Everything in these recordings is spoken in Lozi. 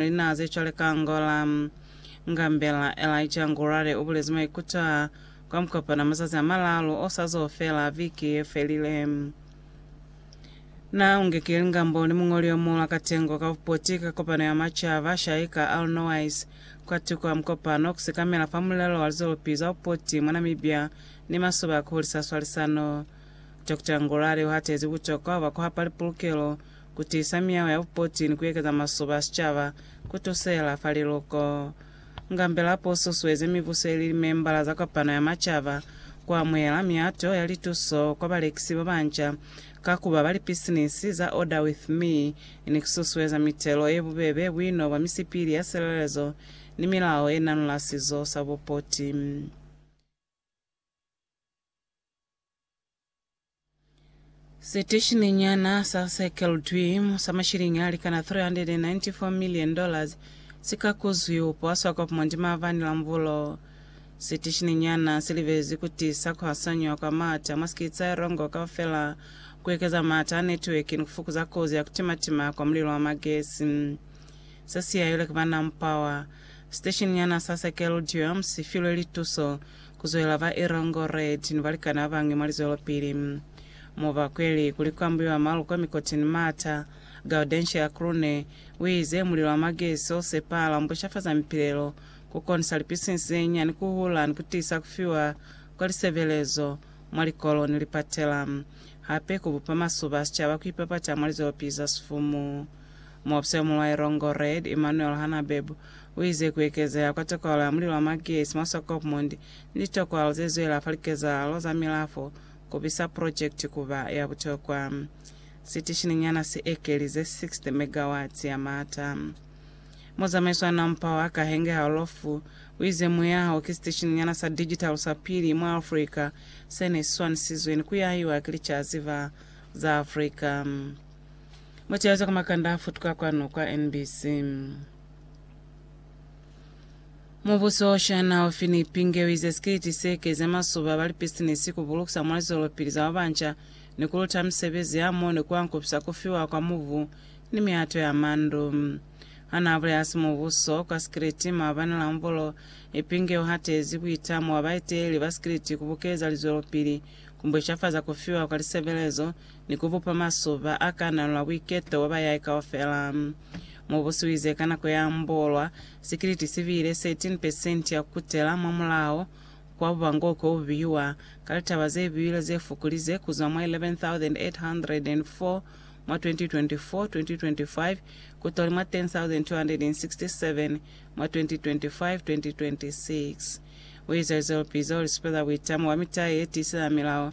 Lina ze cwale ka Angola. Ngambela Elijah Ngurare ubulezi maikuto aa kwa mukopano mazazi a malalu o sa zo fela viki ye felile. Na unge ki lingambo ni muñoli o muula katengo ka bupoti ka kopano ya macaba, Shaika Alnowais, kwa tuku a mukopano ku sekamela fa mulelo wa lizolupi za bupoti mwa Namibia ni masoba a ku hulisa swalisano. Doctor Ngurare u hatezi butokwa bwa ku hapa lipulukelo ku tiisa miyao ya bupoti ni ku ekeza masoba a sicaba, ku tusela fa liluko. Ngambelapo u susueze mibuso ili li membala za Kopano ya Macaba ku amuhela miyato ya lituso kwa balekisi ba banca ka ku ba ba lipisinisi za Order With Me ni ku susueza mitelo ye bubebe, buino bwa misipili ya silelezo, ni milao ye nanula sizo sa bupoti. Siteshininyana sa Circle Dream sa mashilingi a likana 394 million dollars si ka kuzwi ku poswa kwa Pumwandi Maabane la Mubulo. Siteshininyana si libezi ku tiisa ku hasanywa kwa maata mwa sikitsi a Erongo kaufela, ku ekeza maata a netiweki ni ku fukuza kozi ya ku timatima kwa mulilo wa magesi. Se si yailwe ki ba Nampower. Siteshininyana sa Circle Dream si filwe lituso kuzwela ba Erongo Red ni balikani babañwi mwa lizwelopili. Mo ba kweli kuli kwa mbuiwa malu kwa mikoti ni mata, Gaudencia Krune uize, Mulilo wa magesi o sepahala umbushafaza mipilelo, ku konisa lipisinsi ze nyani ku hula ni ku tiisa ku fiwa kwa lisebelezo mwa likolo ni lipatela. Hape ku bupa masuba a sicaba ku ipapata mwa lizwelopili za sifumu. Muofisa yo muñwi wa Erongo Red, Emmanuel Hanabeb, U ize, Ku ekezeha kwa tokwalo ya mulilo wa magesi mwa Swakopmund ni litokwalo ze zwela fa likezahalo za milafo ku bisa projekiti ku ba ya butokwa. Sitishin'i nyana si ekelize 60 megawatts ya maata. Muzamaiso wa Nampao ha Kahenge Haolofu u ize, Muyaha wo ki sitishin'i nyana sa digital sa pili mwa Afrika se ne si swanisizwe ni ku yahiwa ki licaziva za Afrika. Mutezo ka makanda a futuka kwanu kwa NBC. Mubuso wa China u fi ni pingewi ze sikiliti se keza masuba ba lipisinisi ku bulukisa mwa lizwelopili za babanca ni ku luta misebezi ya mo ni ku ankupisa ku fiwa kwa mubu ni mihato ya mandu. Ha n'a bulela hasi mubuso kwa sikiliti maabani la Mvolo, Ipinge u hatezi buitamo bwa baeteleli ba sikiliti ku bukeza lizwelopili ku mbweshafaza ku fiwa kwa lisebelezo ni ku bupa masuba a kananula buiketo bwa bayai kaufela. Mubusi u ize ka nako ya mbolwa, sikiliti si bile 13 pesenti ya ku kutela mwamulaho kwa bubango ko bu bihiwa ka litaba ze biwile ze fukulize ku zwa mwa 11,804 mwa 2024-2025 ku toli mwa 10,267 mwa 2025-2026. U ize lizwelopize u li supeza buitamo bwa mita ye tiiseza milao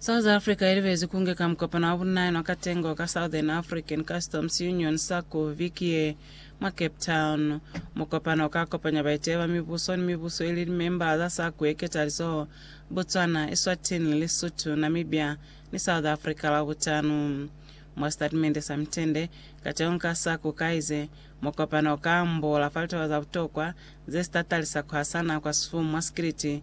South Africa ilibezi kunge ka mukopano wa bunnaena wa katengo ka Southern African Customs Union, SACU, viki ye mwa Cape Town. Mukopano uka kopanya baiteyi ba mibuso ni mibuso ili limemba za SACU ye ketalizoho, Botswana, Eswatini, Lesotho, Namibia ni South Africa Labutanu. Mwa sitatimende sa mitende, kateño ka SACU kaize, Mukopano uka ambola fa litaba za butokwa zesitatali sa kuhasana kwa sifumu mwa sikiliti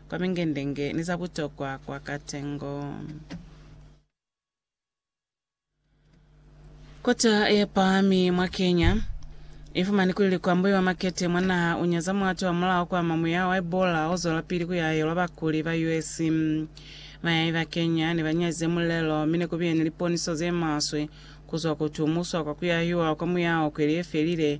kwa mingendenge ni za butokwa kwa katengo. Kota ye pahami mwa Kenya i fumani kuli likwambuli ba makete mwa naha u nyaza muato wa mulao kwa ama muyaho wa Ebola o zwelapili ku yahelwa bakuli ba US. Bayahi ba Kenya ne ba nyazize mulelo mi ne ku bile ni liponiso ze maswe ku zwa ku tumuswa kwa ku yahiwa kwa muyaho kweli ye felile,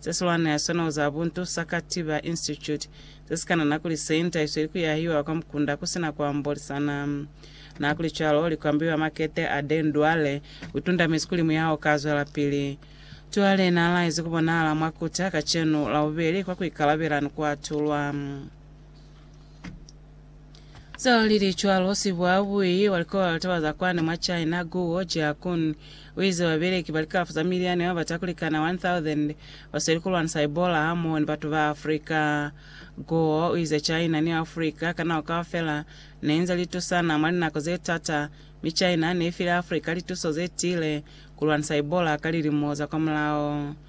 Ze swana ya sona u za buntu, sa Katiba Institute, ze si ka nana kuli se nta isweli ku yahiwa kwa mukunda ku sina ku ambolisana. N'a kuli cwalo, li kwambiwa makete a Den Duale u tundamezi kuli muyaho u ka zwelapili. Duale n'a laezi ku bonahala mwa Kuta kacenu, Labubeli, kwa ku ikalabela ni ku atulwa. Zao lili cwalo, sibuabui wa likola la taba za kwande mwa China, Guo Jiakun, uize babeleki ba likalafo za miliani ba bata kulikana 1,000 basweli kulwanisa Ebola hamoho ni batu ba Africa. Guo uize China ni Africa ka nako kaufela neinze litusana mwa linako ze t'ata, mi China neifile Africa lituso zetiile kulwanisa Ebola ka lilimo za kwamulao.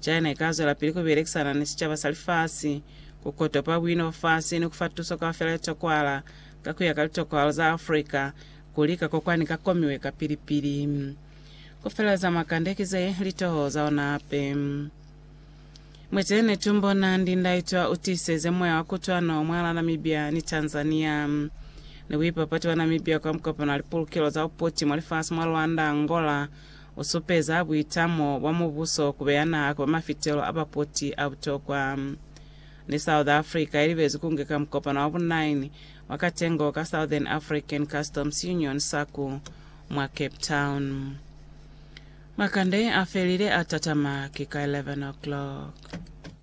China ikazwelapili kubelekisana ni sicaba sa lifasi, kukotopa buina bwa fasi ni kufa tuso kaufela ye tokwala, ka kuya ka litokwalo za Africa, kulika ko kwani ka komiwe ka pili pili. Kufeleleza mwa kande ki ze litoho za ona hape. Mwiteni tumbo nandi ndaitwa utiseze moya wa kutwano mwala Namibia ni Tanzania. Ni buipapati bwa Namibia kwa mukopano wa lipulukelo za uputi mwa lifasi mwa Luanda, Angola, U supeza buitamo bwa mubuso ku beya naha ku ba mafitelo a bapoti a butokwa. Ni South Africa i libezi ku ngeka mukopano wa bu 9 wa katengo ka Southern African Customs Union, SACU, mwa Cape Town. Makande a felile a tatama ki ka 11 o'clock.